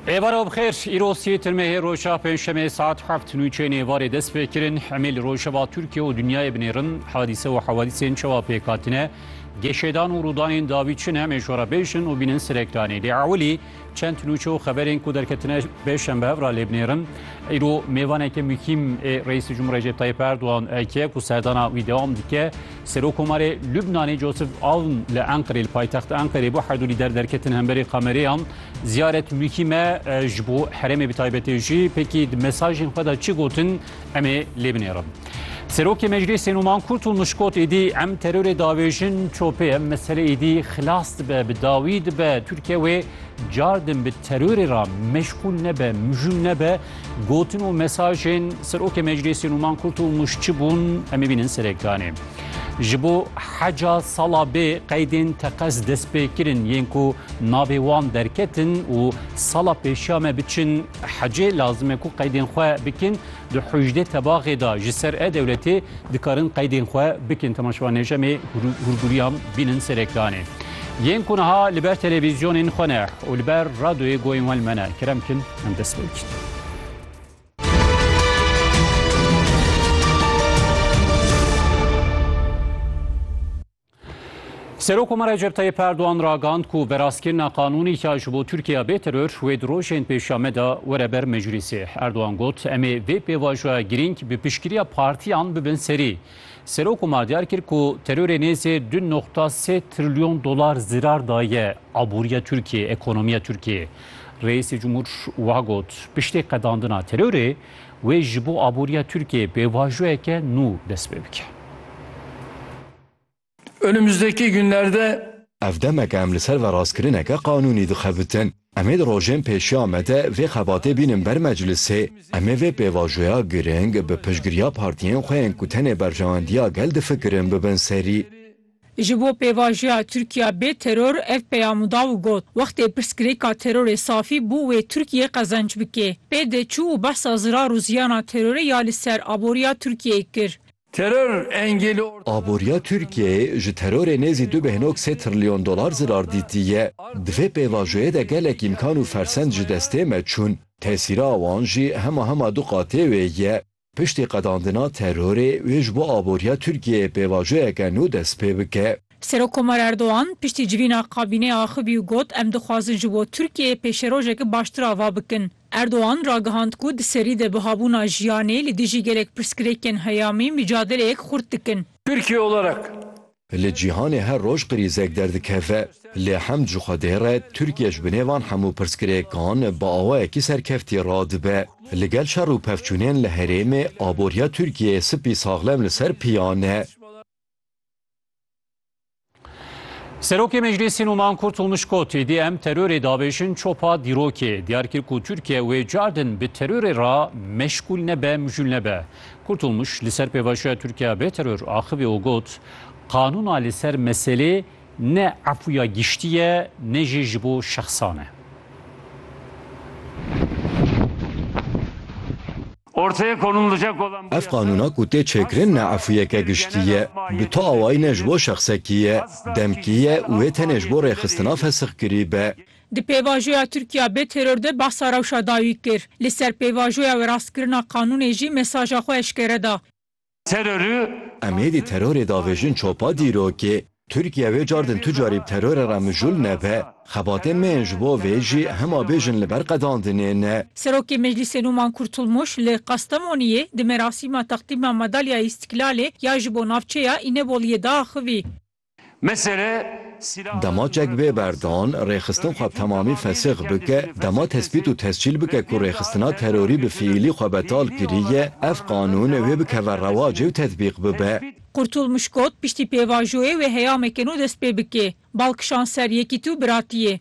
Êvara bixêr, îro sê tirmehê roja pêncşemê saet heft nûçeyên êvarê dest pê kirin. Emê li rojeva Tirkiye û dinyayê binêrin hadîse û hewadîsên çawa pêk hatine, geşêdan û rûdanên dawî çi ne emê ji we re bêjin û bînin Sireklanê. Lê ewilî çend nûçe û xeberên ku derketine pêşembe hev re lê binêrin. Îro mêvaneke muhîm ê Reîsê Cumhurê Recep Tayyip Erdogan eke ku serdana wî dewam dike. Serokomarê Lubnanê Joseph Aoun li Enqirê li paytexta Enqirê bû herdu lîder derketin hemberî kamerêyan. Ziyaret mûkî me ji bo herêmê bi taybetê jî pêkî di mesajên xwe de çi gotin em ê lê binêrin. Serokê Meclîsê Numan Kurt û Mişkot êdî em terorê diavêjin çopê em mesele êdî xilas dibe bi dawî dibe Tirkiye wê car din bi terorê re meşxûl nebe mijûl nebe Gotin û mesajên Serokê Meclîsê Nûman Kurt û Muş çi bûn em ê bînin serê kanê. Ji bo heca sala bê qeydên teqez dest pê kirin yên ku navê wan derketin û sala pêşiya me biçin hecê lazim e ku qeydên xwe bikin di hûjdê tebaxê da ji ser e dewletê dikarin qeydên xwe bikin temaşevanêj em ê hûrgûriyan bînin serê kanê. Yên ku niha li ber televîzyonên xwe ne û li ber radyoyê goyên wan li me ne kerem bikin em dest pê bikin. Serok Omar Recep Tayyip Erdoğan ragand ku veraskirina qanûnî ya ji bo Tirkiye bê teror wê di rojên pêşiya me de were ber meclîsê. Erdoğan got, em ê vê pêvajoya girîng bi piştgiriya partiyan bibin serî. Serok Omar diyar kir ku terorê nêzê du noqta sê trilyon dolar zirar daye aboriya Tirkiyeyê, ekonomiya Tirkiyeyê. Reîsê Cumhur wiha got, Piştî qedandina terorê, wê ji bo aboriya Tirkiyeyê pêvajoyeke nû dest pê bike. Önümüzdeki günlerde. Ev demek e em li ser verastkirineke qanûnî dixebitin. Em ê di rojên pêşiya me de vê xebatê bînin ber meclisê. Em ê vê pêvajoya giring bi piştgiriya partiyên xwe yên ku tenê berjewendiya gel difikirin bibin serî. Ji bo pêvajoya Tirkiya bê teror ev peyam da û got, Wextê pirsgirêka terorê safî bû wê Tirkiyê qezenc bike. Pê de çû û behsa zirar û ziyana terorê ya li ser aboriya Tirkiyeyê kir. Teror engêlê orta ne. Aboriya Tirkiyeyê ji terorê nêzî du bêhnog sê trilyon dolar zirar dîtiye. Di vê pêvajoyê de gelek îmkan û fersend ji destê me çûn. Tesîra wan jî hema hema du qatê wê ye. Piştî qedandina terorê wê ji bo aboriya Tirkiyeyê pêvajoyeke nû dest pê bike. Serokkomar Erdogan piştî civîna kabîneya axivî û got, Em dixwazin ji bo Tirkiyeyê pêşerojeke baştir ava bikin. Erdogan ragihand ku di serî de bihabûna jiyanê li dijî gelek pirsgirêkên heyamî micadeleyek xurt dikin. Tirkiye olarak. Li cîhanê her roj krîzek derdikeve. Lê hem ji Xwedê re Tirkiye ji binê van hemû pirsgirêkan bi awayekî serkeftî radibe. Li gel şer û pevçûnên li herêmê aboriya Tirkiyeyê spî saxlem li ser piyan e. Serokê Meclîsê Numan Kurtulmuş got êdî em terorê dabêjin çopa dîrokê. Diyar kir ku Tirkiye wê car din bi terorê re meşgûl nebe, mijûl nebe. Kurtulmuş li ser pêvajoya Tirkiye bê teror axivî û got, Qanûna li ser meselê ne efûya giştî ye ne jî ji bo şexsan e. Ev qanûna ku tê çêkirin ne efûyeke giştî ye. Bi tu awayî ne ji bo şexsekî ye, demkî ye û wê tenê ji bo rêxistina fesixkirî be. Di pêvajoya Tirkiya bê teror de behsa rewşa dawî kir. Li ser pêvajoya weraskirina qanûnê jî mesaja xwe eşkere da. terorî. Emêdî terorê davêjin çopa dîrokê. Tirkîye wê car din tu carî bi terore re mijul nebe. Xebatên me yên ji bo vê jî hema bê jin li ber qedandinê ne. Serokê Meclîsê Nûman Kurtulmuş li Qastemoniyê di merasîma teqdîma Madalya Îstîklalê ya ji bo navçeya Îneboliyê de axivî. Dema çek bê berdan, rêxistin xwe bi temamî fesix bike, dema tespît û tescîl bike ku rêxistina terorî bi fiîlî xwe betal kiriye, ev qanûn wê bikeve rewacê û tetbîq bibe. Kurtulmuş got, Piştî pêvajoyê wê heyameke nû dest pê bike. Bal kişand ser yekîtî û biratiyê.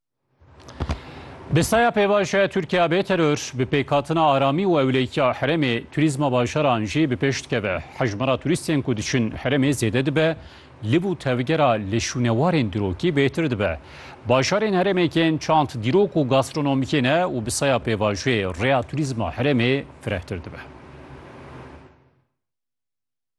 Bi saya pêvajoya Tirkiya bê teror, bi pêkhatina aramî û ewleyikiya herêmê, turîzma bajaran jî bi pêş dikeve. Hejmara turîstên ku diçin herêmê zêde dibe, liv û tevgera li şûnewarên dirokî bêtir dibe. Bajarên herêmê kên çand, dîrok û gastronomîkê ne û bi saya pêvajoyê rêya turîzma herêmê firehtir dibe.